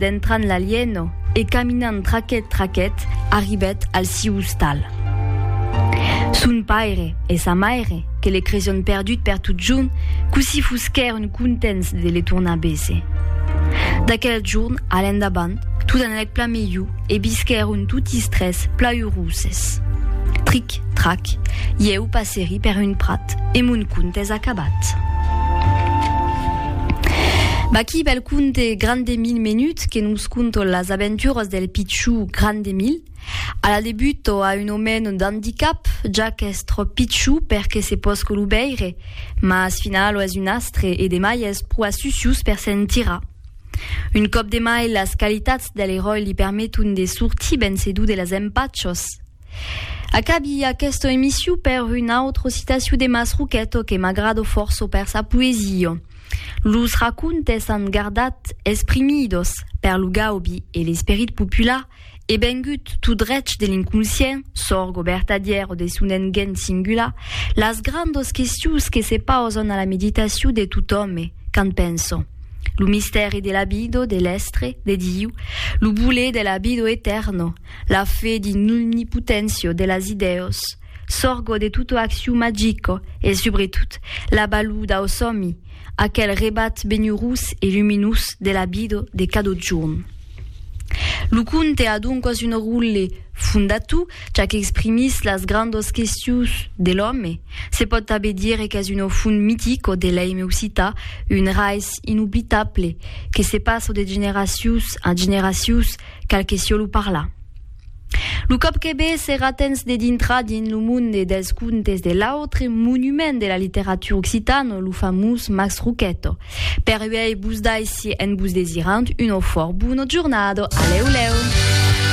Dentrant l'alieno e caminant traquet traquet arribèt al siu ostal. Son paire e sa maire, que le creson perdut per totjorn, cossí fusquèron contents de le tornar béser. D'aquel jorn a l'endavant, tot anèc plan melhor e visquèron totis tres pla euroses. Tric. Trac, ieu passeri per un prat e mon conte es acabat. Vaqui bel conte grand de mil menuts que nos conto las aventuras del pitchou grand de mil. A la debut o a un omeno d'handicap, ja qu'es trop pitchou per que se posque lo veire, mas finala lo es un astre e demai es pro asucius per se'n tirar. Un còp demai las qualitats del eròi li permeton de sortir vencedo de las empachos. Acabi aquesta emission per una autra citacion de Mas Roqueto que m'agrado forço per sa poesia. Los racontes an gardat esprimidos per lo gaubi e l'esperit popular e vengut tot drech de l'inconscient, sorgo vertadièr o de son engeny singular, las grandas questions que se pausan a la meditacion de tot òme quand pensa. Lo mistèri de la vida, de l'estre, de Diu, lo voler de la vida etèrna, La fe dins l'omnipoténcia de las idèos, sorgo de tota accion magica e subretot la balor dau sòmi, aquel rebat benhurós e luminós de la vida de cada jorn. Lo conte a doncas un ròtle fondator, ja qu'exprimís las grandas questions de l'òme. Se pòt tanben dire qu'es una font mitica de l'èime occitan, un raiç inoblitable que se passa de generacions a generacions, Cal que sio lo parla. Lo còp que be serà tens de dintrar dins lo monde dels contes de l'autre monument de la literatura occitana, lo famós Max Roqueto. Per uèi, vos daissi, en vos desirant una fòrt bona jornada. Alèu lèu!